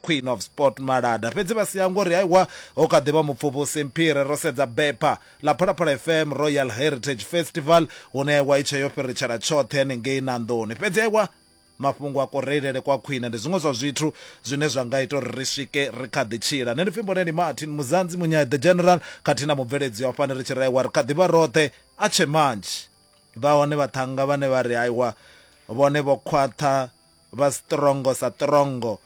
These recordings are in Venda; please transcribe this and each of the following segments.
queen of sport malada fhedzi vha sia ngori haiwa ho kha ḓivha mupfuvhusi mphire ro sedza bepa ḽa phalaphala fm royal heritage festival hune aiwa i tshe yo fhiritshela tshoṱhe hanengei na nḓuni fhedzi aiwa mafhungo a kureilele kwa khwine ndi zwiṅwe zwa zwithu zwine zwa nga ita uri ri swike ri kha ḓi tshila nṋe ndi pfimbo ndi martin muzanzi munyae the general khathihi na mubveledzi wa fani ri tshi raiwa ri kha ḓivha roṱhe a tshe manzhi vha hone vhaṱhanga vhane vha ri haiwa vhone vho khwaṱha vha strongo sa trongo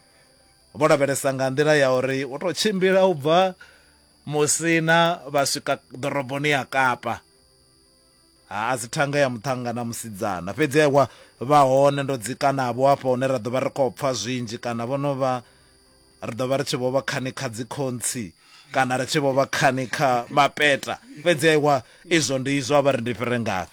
vho lavhelesa nga nḓila ya uri u to tshimbila u bva musina vha swika ḓoroboni ya kapa ha a si thanga ya muṱhanga na musidzana fhedzi ewa vha hone ndo dzika navho hafha hune ra ḓo vha ri khou pfha zwinzhi kana vho no vha ri ḓo vha ri tshi vho vha khani kha dzikhontsi kana ri tshi vho vha khani kha mapeta fhedzi aiwa izwo ndi izwo a vha ri ndi fhire ngafhi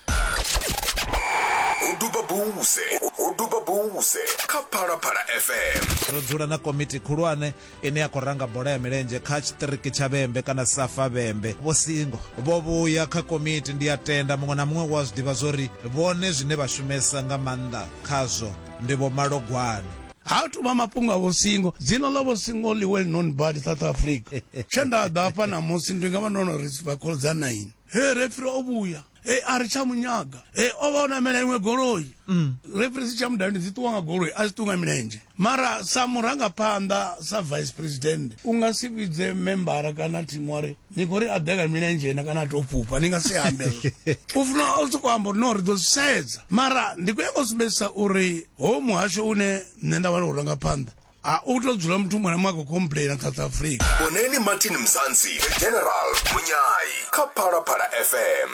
ho duba buse ho duba buse kha phalaphala fm ro dzula na komiti khulwane ine ya khou ranga bola ya milenzhe kha tshiṱiriki tsha vhembe kana safa vhembe vho singo vho vhuya kha komiti ndi a tenda muṅwe na muṅwe wa zwi ḓivha zwori vhone zwine vha shumesa nga maanḓa khazwo ndi vho malogwane ha thu vha mafhungo a vhosingo dzina ḽa vhosingo ḽi well known bad south africa tshe nda ḓa hafha namusi ndi nga vha ndo no ri vhakolo dza nine he refri o vhuya e a ri tsha munyaga e o vha o namela iṅwe goloi mm. refri si tsha mudavhini dzi ṱuwa nga goloi a dzi ṱuwa nga milenzhe mara sa murangaphanḓa sa vice president u nga si vhidze membara kana thimu wa ri ni khou ri a ḓe ka milenzhe na kana a tou fhufha ni nga si ambe u funa u sokou amba uri no ri ḓo zwi sedza mara ndi khou yanga u sumbedzisa uri ho muhasho une nṋe nda vha ndi khou ranga phanḓa a u tou dzula muthu muṅwe na muṅwe a khou complaina south africa boneni martin mzansi the general munyai kha phalaphala fm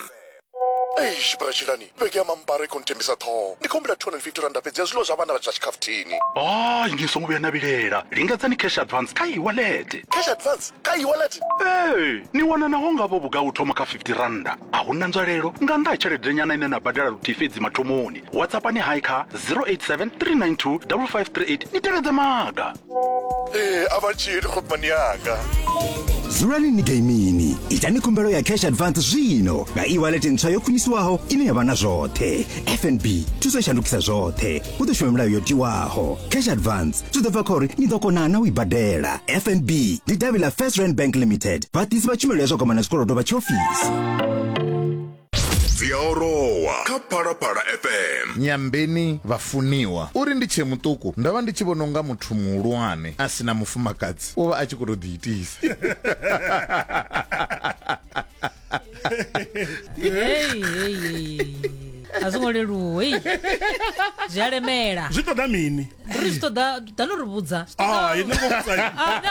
eish bratshilani vhege ya mambara i khou nthembisa ṱhoho ndi khou humbela 250 randa fhedzi ya zwiḽiwa zwa vhana vha tshi ḽa tshikhafuthini hayi ni songo vhuya na vhilela lingedzani cash advance kha iwalete cash advance kha iwalete ee ni wana naho ngavho vhugai u thoma kha 50 randa a hu na nzwalelo nga nnḓa ha tshelede-nyana ine na badela luthihi fhedzi mathomoni whatsappani hai kha 087 392 5538 ni tevhedze maga ee a vha tshili khomani yanga dzulani ni gaimini itani khumbelo ya cash advance zwino nga e-wallet ntswa yo khwinisiwaho ine ya vha na zwoṱhe fnb thuso i shandukisa zwoṱhe hu ḓo shuma milayo yo tiwaho cash advance zwi ḓo bva kha uri ni ḓo kona na u i badela fnb ndi davhi ḽa first rand bank limited vhaḓisi vha tshumelo ya zwa kwamana zwikolodo vha tshiofisi dzi a orowa kha phalaphala fm nyambeni vhafuniwa uri ndi tshee muṱuku ndo vha ndi tshi vhona unga muthu muhulwane a si na mufumakadzi u vha a tshi khou tou ḓiitisa Hey, hey, hey. a zwo ngo leluwa hey. zwi a lemela zwi ṱoḓa mini ri zwi ṱoḓa ḓa no ri vhudza Ah, ini ngo vhudzai. Ah, no.